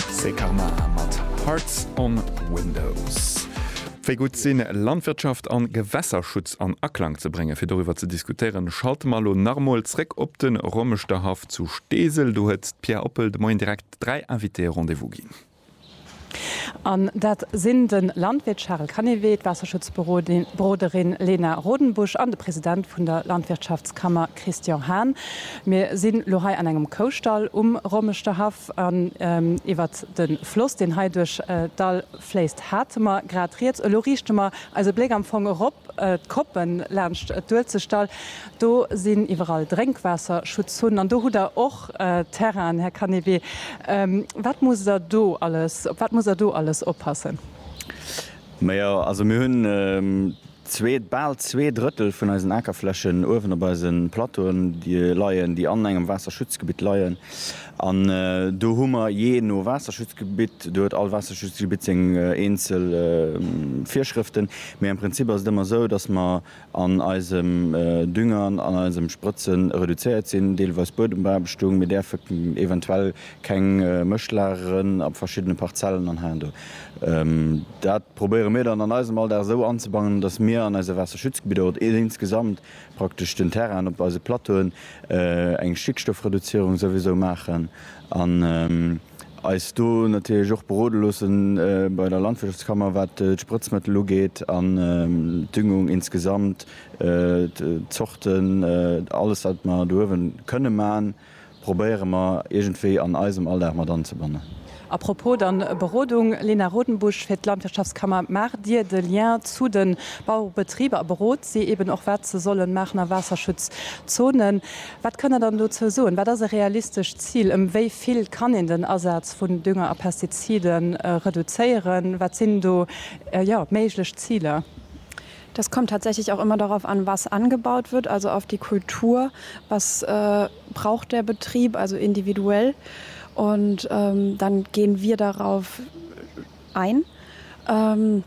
C'est Karma mat Hearts on Windows. Wéi gutt sinn, Landwirtschaft an Gewässerschutz an Aklang ze bréngen? Fir doriwwer ze diskutéieren, schalte mer elo nach emol zréck op de Rommeschterhaff zu Steesel. Do huet d'Pia Oppel de Moien direkt dräi Invitéë Rendez-vous ginn. An dat sinn de Landwirt Charel Canivet, d'Waasserschutzberoderin Lena Rodenbusch an de President vun der Landwirtschaftskammer Christian Hahn. Mir si lo hei an engem Koustall um Rommeschterhaff. An iwwer de Floss, deen hei duerch d'Dall fléisst, hate mer grad rieds. Elo riichte mer eise Bléck am Fong erop, d'Koppen laanscht d'Uelzechtdall. Do sinn iwwerall Drénkwaasserschutzzunnen an do hutt Der och Terrainen, Här Canévet. Wat musst Der do alles, op wat musst Der do alles oppassen? Majo, also mir hunn zwee, bal zwee Drëttel vun eisen Akerflächen uewen op eise Plateauen leien, déi an engem Waasserschutzgebitt leien. An do hu mer jee no Waasserschutzgebitt, do huet all Waasserschutzgebitt seng eenzel Virschrëften, mee am Prinzip ass et ëmmer esou, dass mer, an eisem Düngern, an eisem Sprëtzen reduzéiert sinn, deelweis Buedembeaarbechtung, mir däerfe eventuell keng Mëscht lageren a verschiddene Parzellen an heiansdo. Dat probéiere mir dann an eisem Alldag esou anzebannen, datt mir an eise Waasserschutzgebidder oder insgesamt praktesch den Terrainen op eise Plateauen eng Stickstoffreduzierung souwisou maachen an, eis do natierlech och berode loossen bei der Landwirtschaftskammer, wat d'Sprëtzmëttel ugeet an d'Düngung insgesamt, d'Zorten, alles, wat mer do uewe kënne man, probéiere mer iergendwéi an eisem Alldag mat anzebannen. A propos dann Berodung, Lena Rodenbusch fir d'Landwirtschaftskammer, Maacht Dir de Lien zu de Bauerebetriber a berot si eeben och, wat se solle maachen a Waasserschutzzonen? Wat kënnt Der dann dozou soen? Wat ass e realistescht Zil? Ëm wéi vill kann een den Asaz vun Dünger a Pestizide reduzéieren? Wat sinn do méiglech Ziler? Das kommt tatsächlich auch immer darauf an, was angebaut wird, also auf die Kultur, was braucht der Betrieb, also individuell, und dann gehen wir darauf ein.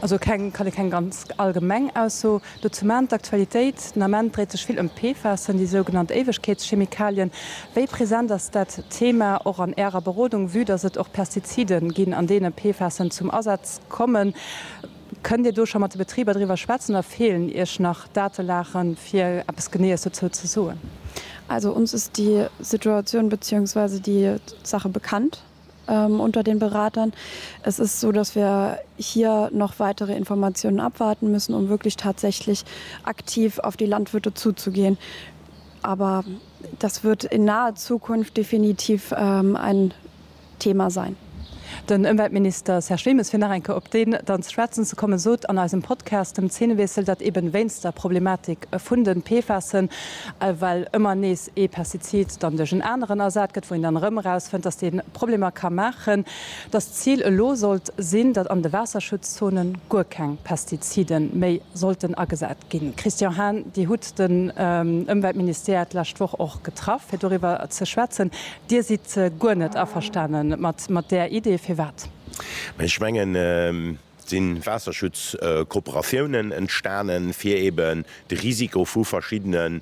Also keng, kann ee keng ganz allgemeng Ausso dozou man. D'Aktualitéit den Ament dréit sech vill ëm d'PFASen, déi sougenannt Éiwegkeetschemikalien. Wéi present ass dat Thema och an Ärer Berodung, vue dass et och Pestizide ginn, an deene PFASen zum Asaz kommen? Kënnt Dir do scho mat de Betriber driwwer schwätzen a feelen Iech nach Datelagen, fir eppes Geneeës dozou ze soen? Also ons ass déi Situatioun beziehungsweise déi Saache bekannt. unter den Beratern. Es ist so, dass wir hier noch weitere Informationen abwarten müssen, um wirklich tatsächlich aktiv auf die Landwirte zuzugehen. Aber das wird in naher Zukunft definitiv ein Thema sein. Den Ëmweltminister Serge Wilmes, fir nach eng Kéier op deen dann ze schwätzen ze kommen, sot an eisem Podcast dem Zeenewiessel, datt eben wéinst der Problematik vun den PFASen, well ëmmer nees, ee Pestizid dann duerch en aneren ersat gëtt, wou een dann erëm erausfënnt, dass dee Problemer ka maachen, dass d'Zil elo sollt sinn, datt an de Waasserschutzzone guer keng Pestizide méi sollten agesat ginn. Christian Hahn, Dir hutt den Ëmweltministère d'lescht Woch och getraff, fir doriwwer ze schwätzen. Dir sidd guer net averstane mat där Idee. Firwat? Ech mengen, Et si Waasserschutzkooperatiounen entstanen, fir eben de Risiko vu verschiddene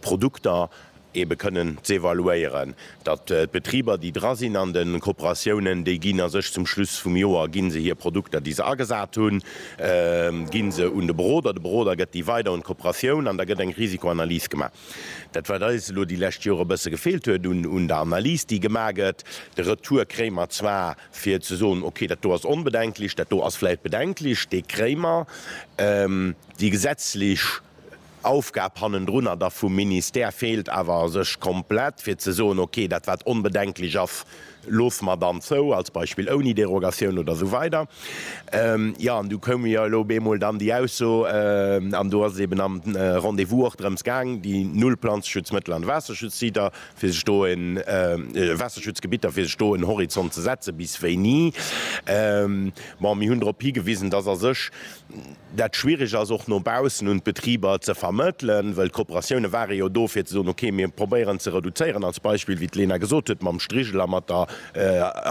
Produkter ebe kënnen z'evaluéieren, datt d'Betriber, déi dra sinn an de Kooperatiounen, déi ginn a sech zum Schluss vum Joer gi se hir Produkter, déi se agesat hunn, gi se un de Beroder, de Beroder gëtt déi weider un d'Kooperatioun an da gëtt eng Risikoanalys gemaach. Dat, wat eis elo déi lescht Jore e bësse gefeelt huet un der Analys, déi gemaach gëtt, de Retour kréie mer zwar, fir ze soen, okay, dat do ass onbedenklech, dat do ass vläicht bedenklech, dee kréie mer, déi gesetzlech Aufgab hannendrunner da vum Ministère feelt awer a sech komplett, fir ze soen, okay, dat wat onbedenklech ass, loosse mer dann zou, als Beispill ouni Derogatioun oder esou weider. Jo, an du koume jo elo bemol dann déi Ausso, an do ass et eben am Rendez-vous och drëms gaang, déi null Planzeschutzmëttel an de Waasserschutzsiter fir sech do en Waasserschutzgebitter, fir sech do en Horizont ze setzen, bis wéini. Bon, mir hunn drop higewisen, dass a sech dat schwierig ass, och no baussen un d'Betriber ze vermëttelen, well d'Kooperatiounen ware jo do, fir ze soen, okay, mir probéieren ze reduzéieren, als Beispill, wéi d'Lena gesot huet, mam Strigel a mat der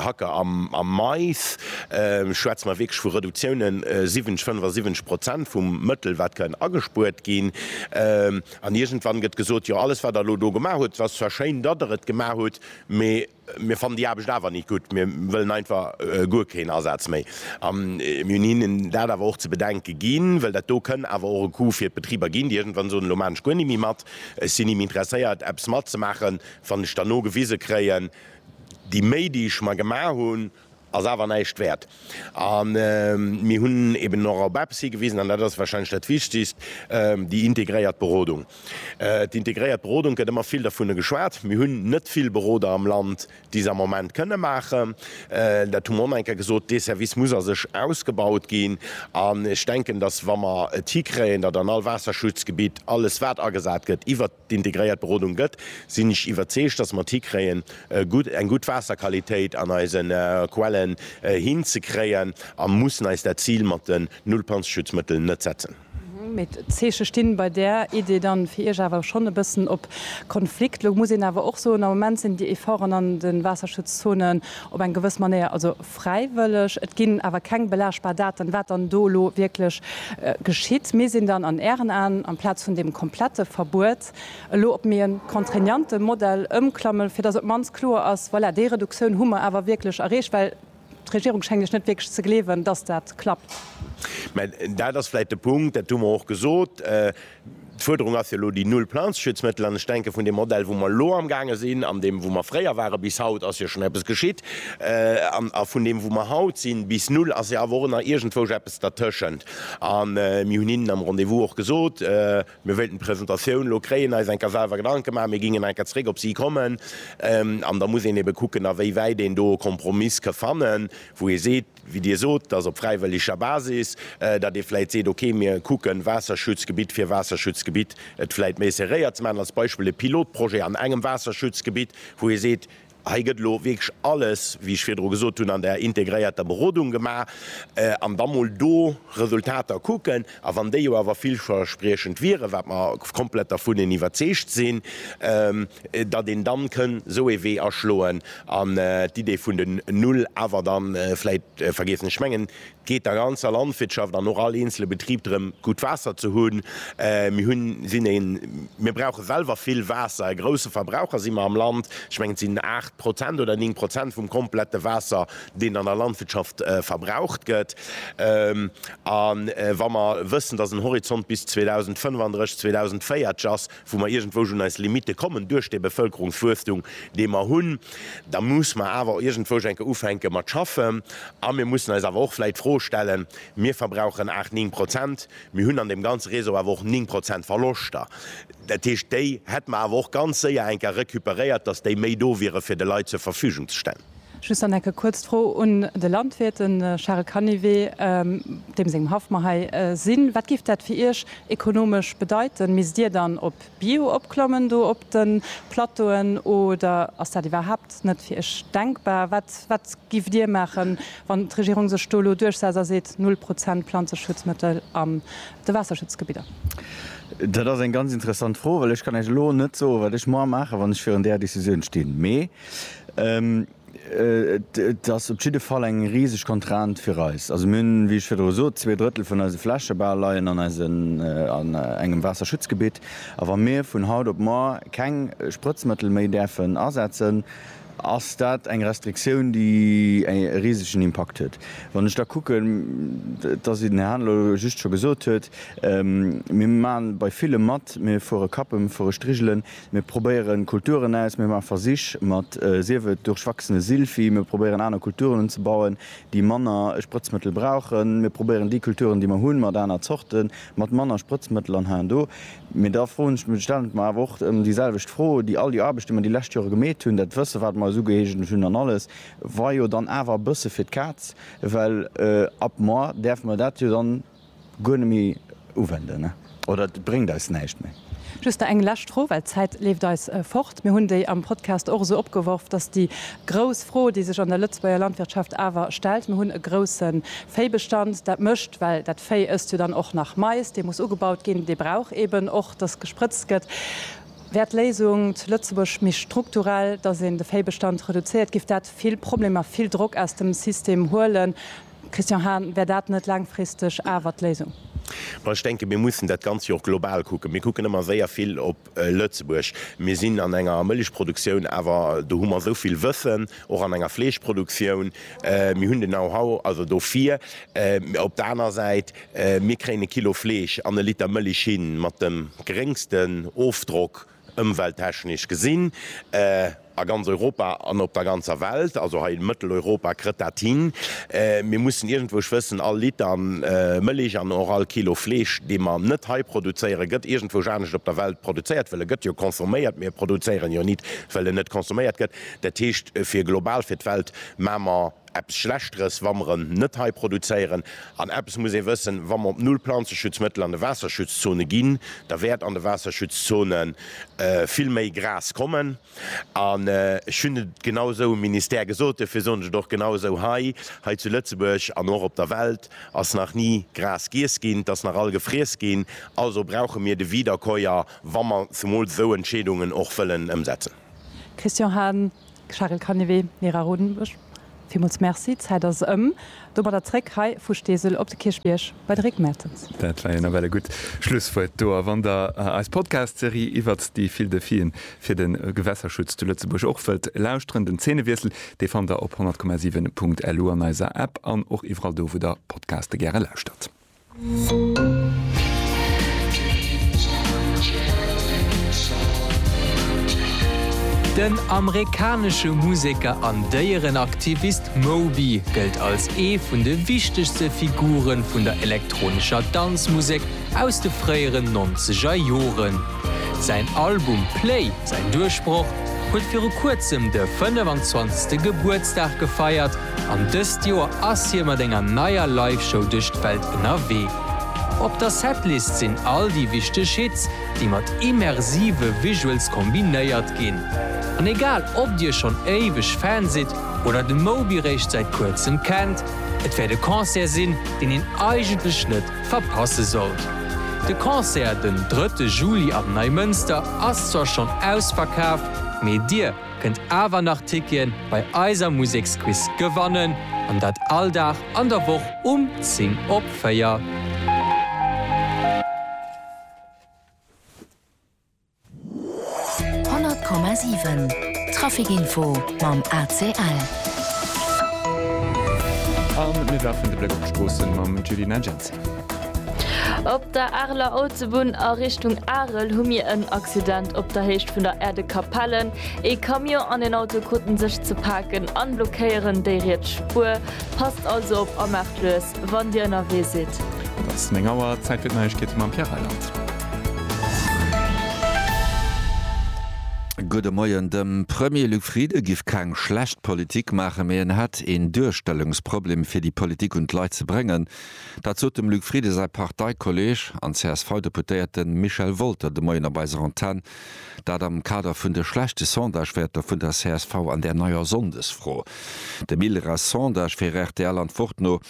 Hacke am Mais schwätze mer wierklech vu Reduktiounen, 70, 75 Prozent vum Mëttel, wat kann agespuert ginn. An iergendwann gëtt gesot, jo, alles, wat Der elo do gemaach hutt, ass zwar schéin, datt Der et gemaach hutt, mee mir fannen déi Aarbecht awer nit gutt, mir wëllen einfach guer keen Asaz méi. A mir hunn hinnen dat awer och ze bedenke ginn, well dat do kënn awer och e Coût fir d'Betriber ginn, déi iergendwann soen, elo maachen ech guer ni méi mat, ech sinn ni méi interesséiert, eppes matzemaachen, wann ech dann nogewise kréien, déi Méi, déi ech mer gemaach hunn, ass awer näischt wäert. A mir hunn eben och op eppes higewisen, an dat ass warscheinlech dat Wichtigst, déi integréiert Berodung. D'Integréiert Berodung gëtt ëmmer vill dovunner geschwat. Mir hunn net vill Beroder am Land, déi se am Moment kënne maachen. Dat hu mer onenker gesot. Dee Service muss a sech ausgebaut ginn. An ech denken, dass, wa mer et hikréien, datt an all Waasserschutzgebitt alles, wat agesat gëtt, iwwert. integréiert Berodung gëtt, sinn ech iwwerzeegt, dass mer et hikréien, eng gutt Waasserqualitéit an eise Quelle hinzekréien a mussen eis dat Zil mat den Nullplanzeschutzmëttel net setzen. Mee d'Zeeche sti bei där Idee da fir Iech awer schonn e bëssen op Konflikt. Lo muss een awer och soen, am Moment sinn déi Efforten an de Waasserschutzzonen op eng gewëss Manéier, also, Fräiwëlleg. Et ginn awer keng belaagbar Daten, wat dann do elo wierklech geschitt. Mir sinn dann an Ären Aen, amplaz vun deem komplette Verbuet, elo op méi e contraignante Modell ëmklamme fir datt op d'mannst kloer ass, voilà, déi Reduktioun hu mer awer wierklech erreecht. Well d'Regierung schéngt lech net wierklech ze gleewen, datt dat klappt. Mä dat ass vläicht de Punkt, dat hu mer och gesot, D'Fuerderung ass jo elo déi null Planzeschutzmëttel. An ech denken, vun deem Modell, wou mer elo amgaange sinn, an deem, wou mer fréier waren, bis haut ass jo schonn eppes geschitt. A vun deem, wou mer haut sinn, bis null ass jo awer och nach iergendwousch eppes dertëschent. A mir hunn hinnen am Rendez-vous och gesot, mir wéilten d'Presentatioun elo kréien, eis eng Kéier selwer Gedanke maachen. Mir gingen eng Kéier zréck op si kommen. An da muss een ebe kucken, awéiwäit een do e Kompromiss ka fannen, wou ee seet, wéi Dir sot, dass op fräiwëlleger Basis, datt ee vläicht seet, okay, mir kucken Waasserschutzgebitt fir Waasserschutzgebitt et vläicht méi serréiert ze maachen, als Beispill e Pilotprojet an engem Waasserschutzgebitt, wou ee seet, hei gëtt elo wierklech alles, wéi ech virdru gesot hunn, an der integréierter Berodung gemaach, an da mol do Resultater kucken. A wann déi jo awer villverspriechend wieren, wat mer komplett dervun iwwerzeegt sinn, datt een dann kënn esou ee Wee aschloen an d'Idee vun den Null awer dann vläit vergiessen. Ech mengen, et geet der ganzer Landwirtschaft an och all eenzele Betrib drëm, gutt Waasser ze hunn. Mir hunn, sinn een, mir brauche selwer vill Waasser, e grousse Verbraucher si mer am Land. Ech mengen, et sinn aacht Prozent oder néng Prozent vum komplette Waasser, deen an der Landwirtschaft verbraucht gëtt. A wa mer wëssen, dass en Horizont bis 2035, 2040 ass, wou mer iergendwousch un eis Limitte kommen duerch dee Bevëlkerungswuesstum, dee mer hunn, da muss mer awer iergendwousch eng Kéier ufänke mat schaffen. A mir mussen eis awer och vläit d'Fro stellen, Mir verbrauchen aacht, néng Prozent, mir hunn an deem ganze Réseau awer och néng Prozent Verloschter. Dat heescht, déi hätte mer awer och ganz séier eng Kéier recuperéiert, dass déi méi do wiere fir de Leit zur Verfügung ze stellen. Just dann enke kuerz d'Fro un de Landwirt, de Charel Canivet, deem sengem Haff mer hei sinn. Wat géif dat fir Iech ekonomesch bedeiten? Misst Dir dann op Bio opklommen do op de Plateauen oder ass dat iwwerhaapt net fir Iech denkbar? Wat wat giff Dir maachen, wann d'Regierung sech do elo duerchsetzt a seet, null Prozent Planzeschutzmëttel an de Waasserschutzgebidder? Dat ass eng ganz interessant Fro, well ech kann Iech elo net soen, wat ech moar maachen, wann ech virun där Decisioun stinn. Mee Et ass op jidde Fall eng riseg Contrainte fir eis. Also mir hunn, wéi ech virdru sot, zwee Drëttel vun eise Fläche bal leien an eisen, an engem Waasserschutzgebitt. A wa mir vun haut op muer keng Sprëtzmëttel méi däerfen asetzen, ass dat eng Restriktioun, déi e risegen Impakt huet. Wann ech da kucken, et ass wéi den Här Hahn elo just scho gesot huet, mir maache bei villem mat, mir fuere Kappe, mir fuere Strigelen, Mir probéieren Kulturen aus, mir maache Versich mat, sief et duerchwachsene Silphi, mir probéieren aner Kulturen unzebauen, déi manner Sprëtzmëttel brauchen, mir probéieren déi Kulturen, déi mer hunn, mat aner Zorte mat manner Sprëtzmëttel an heiando. Mee da froen ech, stellen ech mer awer och ëm déi selwecht Fro, déi all déi Aarbecht, déi mer déi lescht Jore gemeet hunn, dat Wësse wat mer eis ugeeegent hunn an alles, war jo dann awer e bësse fir d'Kaz, well ab moar däerfe mer dat jo dann, guer net méi uwenden oder et bréngt eis näischt méi. Just nach eng lescht Fro, well d'Zäit leeft eis fort. Mir hunn déi am Podcast och esou opgeworf, dass déi grouss Fro, déi sech an der Lëtzebuerger Landwirtschaft awer stellt, mir hunn e grousse Véibestand, dat mécht, well dat Véi ësst jo dann och nach Mais, dee muss ugebaut ginn, dee brauch eeben och, dass gesprëtzt gëtt. Wär d'Léisung zu Lëtzebuerg méi strukturell, dass een de Véibestand reduzéiert? Giff dat vill Problemer, vill Drock aus dem System huelen? Christian Hahn, Wär dat net laangfristeg awer d'Léisung? Ma ech denken, mir mussen dat Ganzt jo och global kucken. Mir kucken ëmmer séier vill op Lëtzebuerg. Mir sinn an enger Mëllechproduktioun, awer do hu mer esou vill Wëssen, och an enger Fleeschproduktioun. Mir hunn den Know-how, also dofir. Op der aner Säit, mir kréien e Kilo Fleesch an e Liter Mëllech hin mat dem geréngsten Ofdrock. Ëmwelttechnesch gesinn, a ganz Europa an op der ganzer Welt, also hei Mëtteleuropa krëtt dat hin, mir mussen iergendwou, ech wëssen, all Liter Mëllech an och all Kilo Fleesch, dee mer net hei produzéieren, gëtt iergendwousch anescht op der Welt produzéiert, well e gëtt jo consomméiert, mir produzéieren jo nit, well en net consomméiert gëtt. Dat heescht, fir global fir d'Welt maache mer eppes Schlechteres, wa mer en net hei produzéieren. An eppes muss ee wëssen, Wa mer op null Planzeschutzmëttel an de Waasserschutzzone ginn, da wäert an de Waasserschutzzone vill méi Gras kommen. An ech hunn et genau esou um Ministère gesot, duerfir soen ech et och genau esou hei, Hei zu Lëtzebuerg an och op der Welt ass nach ni Gras giess ginn. Et ass nach all gefriess ginn. Also brauche mir de Wiederkäuer, wa mer zemools esou Entscheedungen och wëllen ëmsetzen. Christian Hahn, Charel Canivet, Nee, Ra Rodenburg, villmools Merci. D'Zäit ass ëm. Domadder zréck hei vu Steesel op de Kierchbierg bei de Réck Mertens. Dat war jo nawell e gutt Schlusswuert do. A wann Der eis Podcast-Serie iwwert déi vill Defien fir de Gewässerschutz zu Lëtzebuerg och wëllt lauschteren, den Zeenewiessel, dee fannt Der op 100,7.lu an eiser App an och iwwerall do, wou Der Podcaste gäre lauschtert. Den amerikanesche Museker an Déierenaktivist Moby gëllt als ee vun de wichtegste Figure vun der elektronescher Danzmusek aus de fréieren nonzeger Joren. Säin Album Play, säin Duerchbroch, huet viru kuerzem de 25. Gebuertsdag gefeiert An dëst Joer ass hie mat enger neier Live-Show duerch d'Welt ënnerwee. Op der Setlist sinn all déi wichteg Hits, déi mat immersive Visuals kombinéiert ginn. An egal ob dir schonn éiweg Fan sidd oder de Moby réischt säit kuerzem kennt, et wäert e Concert sinn, deen een eigentlech net verpasse sollt. De Concert den drëtte Juli am Neimënster ass zwar schonn ausverkaf, mee dir, kënnt awer nach Ticketen bei eiser Museksquiz gewannen an dat all Dag an der Woch um 10 op 4. Honnert Komma siwen Trafikinfo mam ACL. A mir werfen de Bléck op d'Stroossen mam Julie Neigency. Op der Areler Autobunn a Richtung Arel hu mir en Accident op der Héicht vun der Aire de Capelle. Ee Camion an een Auto kruten sech ze paken an blockéieren déi riets Spuer. Passt also op a maacht lues wann dir ënnerwee sidd. Et ass 9 Auer, Zäit fir d'Neiegkeete mam Pierre Reyland. Gudde Moien. Dem Premier Luc Frieden giff keng schlecht Politik maachen, mee en hätt een Duerstellungsproblem fir déi Politik un d'Leit ze bréngen. Dat sot dem Luc Frieden säi Parteikolleeg an CSV-Deputéierte Michel Wolter de Moien op eiser Antenn. Dat am Kader vun de schlechte Sondagewäerter vun der csv an där neier Sonndesfro. Dem ILRA Sondage fir rtl Antwort no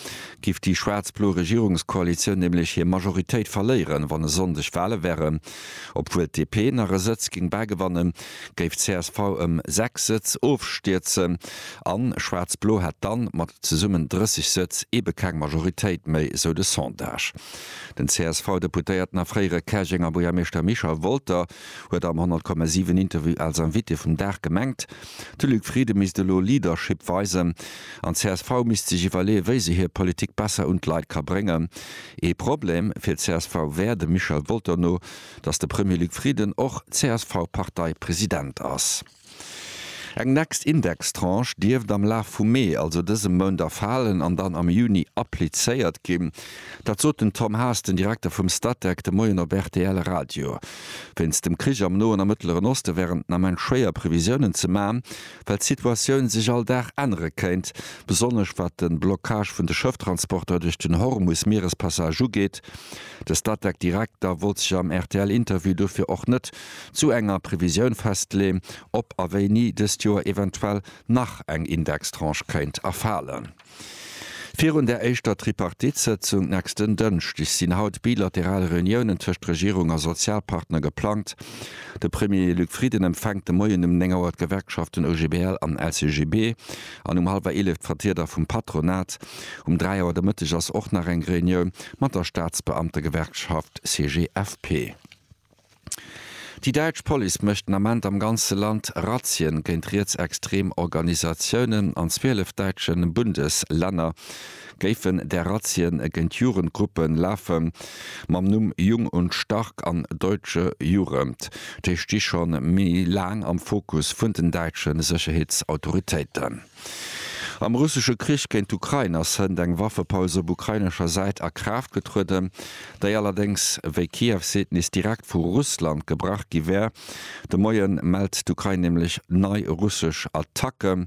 giff déi schwaarz-blo Regierungskoalitioun nämlech hir Majoritéit verléieren, wann e Sonndeg Wale wären. Obwuel d'DP nach e Sëtz géing bäigewannen, géif d'CSV ëm 6 Sëtz ofstierzen an Schwaarz-Blo hätt dann mat zesummen 30 Sëtz ebe keng Majoritéit méi, sou de Sondage. Den CSV-Deputéierten a fréiere Käerjenger Buergermeeschter Michel Wolter huet am 100,7 Interview als Invité vum Dag gemengt, de Luc Frieden misst elo Leadership weisen an d'CSV misst sech iwwerleeë wéi se hir Politik besser un d'Leit ka bréngen. Ee Problem fir d'CSV wär dem Michel Wolter no, Dass de Premier Luc Frieden och CSV-Parteipresident ass. Eng next Indextranche dierft am Laf vum Mee, also dësem Mount, erfalen an dann am Juni applizéiert ginn. Dat sot den Tom Haas, den Direkter vum Statec, de Moien op rtl Radio. Wéinst dem Krich am Noen a Mëttleren Oste wären den Ament schwéier Previsiounen ze man. Well d'Situatioun sech all Dag ännere kéint, besonnesch wat de Blockage vun de Schëfftransporter duerch den Hormus-Mierespassage ugeet. De Statec-Direkter wollt sech am RTL-Interview dofir och net zu enger Previsioun festleeën, ob a wéini dëst Joer eventuell nach eng Indextranche kéint erfalen. Virun der éischter Tripartite-Sëtzung nächsten Dënschdeg sinn haut bilateral Reuniounen tëscht Regierung a Sozialpartner geplangt. De Premier Luc Frieden empfänkt de Moien um 9 Auer d'Gewerkschaften OGBL an LCGB an um hallwer 11 d'Vertrieder vum Patronat. Um 3 Auer de Mëtteg ass och nach eng Reunioun mat der Staatsbeamtegewerkschaft CGFP. Déi däitsch Police mécht den Ament am ganze Land Razzien géint rietsextrem Organisatiounen. An 12 däitsche Bundeslänner géifen där Razzien géint Jugendgruppe lafe mam Numm Jung und Stark an Deutsche Jugend. Déi sti scho méi laang am Fokus vun den däitsche Sécherheetsautoritéiten. Am russesche Krich géint d'Ukrain ass hënt eng Waffepaus op ukrainescher Säit a Kraaft getrueden, déi allerdéngs, wéi Kiew seet, nees direkt vu Russland gebrach gi wär. De Moie mellt d'Ukrain nämlech nei russesch Attacken.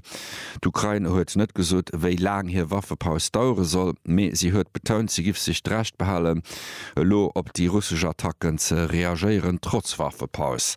D'Ukrain huet net gesot, wéi laang hir Waffepaus dauere soll, mee si huet betount, si giff sech d'Recht behalen, elo op déi russesch Attacken ze reagéieren, trotz Waffepaus.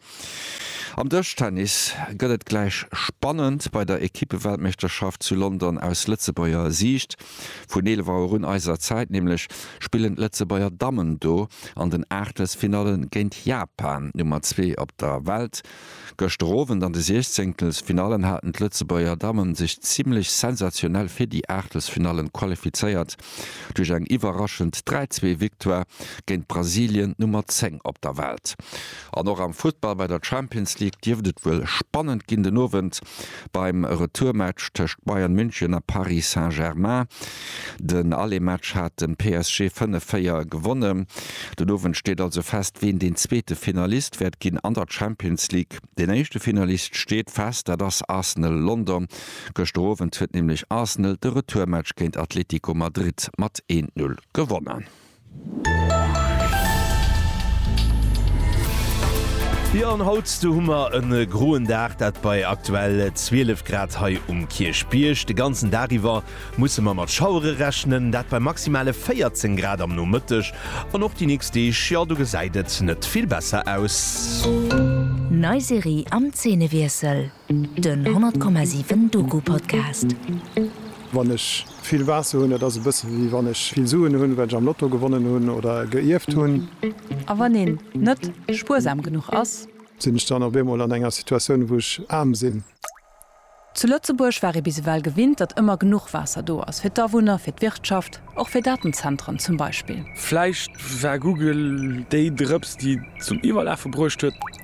Am Dëschtennis gëtt et gläich spannend bei der Ekippeweltmeeschterschaft zu London. Aus Lëtzebuerger Siicht, vun 11 Auer un eiser Zäit nämlech, spillen d'Lëtzebuerger Dammen do an den Aachtelsfinalle géint Japan, Nummer zwee op der Welt. Gëschter Owend an de Siechzéngtelsfinallen haten d'Lëtzebuerger Damme sech zimmlech sensationell fir déi Aachtelsfinalle qualifizéiert duerch eng iwwerraschend 3-2 Victoire géint Brasilien, Nummer 10 op der Welt. An och am Futtball bei der Champions League dierft et wuel spannend ginn den Owend beim Retourmatch tëscht Bayern München a Paris Saint-Germain. Den Allematch hat de PSG 5, 4 gewonnen. Den Owend steet also fest, ween deen zweete Finalist wäert ginn an der Champions League. Deen éischte Finalist steet fest, dat ass Arsenal London. Gëschter Owend huet nämlech Arsenal de Retourmatch géint Atlético Madrid mat 1, 0 gewonnen. Jo an haut do hu mer en groen Dag, dat bei aktuell 12 Grad hei um Kierchbierg. De ganzen Dag iwwer musse mer mat Schauere rechnen, dat bei maximale 14 Grad am Nomëtteg an och déi nächst Deeg, jo do gesäit et net vill besser aus. Nei Serie am Zeenewiessel. Den 100,7 Doku Podcast. Wann ech vill Waasser hunn, dat ass e bësse wéi wann ech vill Suen hunn, well ech am Lotto gewonnen hunn oder geierft hunn. A wann een net spuersam genuch ass? Sinn ech dann op eemol an enger Situatioun, wou ech aarm sinn? Zu Lëtzebuerg war ee bis ewell gewinnt, datt ëmmer genuch Waasser do ass, fir d'Awunner, fir d'Wirtschaft, och fir Datenzentren zum Beispill. Vläicht war Google déi Drëps, déi et zum Iwwerlafe bruecht huet.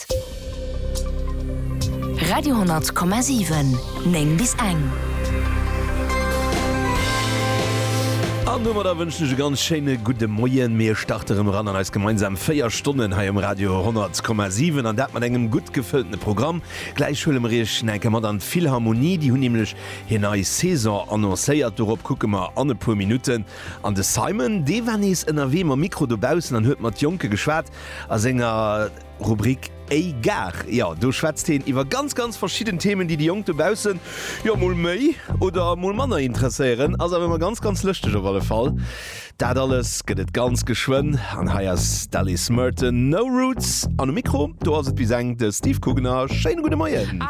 Welt. Radio 10,7, 9 bis 1. An domadder wënschen ech e ganz schéine gudde Moien. Mir starte rëm eran an eis gemeinsam 4 Stonnen hei um Radio 10,7 an dat mat engem gutt gefëllte Programm. Gläich huele mer Iech nach eng Kéier mat an d'Philharmonie. Déi hunn nämlech hir nei Saison annoncéiert. Dorop kucke mer an e puer Minutten. An de Simon, dee war nees ënnerwee mam Mikro dobaussen an huet mat Jonke geschwat a senger. Rubrik Ey Gag, jo do schwätzt heen iwwer ganz ganz verschidden Themen déi déi Jonk dobaussen jo mol méi oder mol manner interesséieren. Ass awer ëmmer ganz ganz lëschteg op alle Fall. Dat alles gëtt et ganz geschwënn an hei ass d'Alice Merton, No Roots an um Mikro do ass et bis eng de Steve Kugener. Schéine gudde Moien.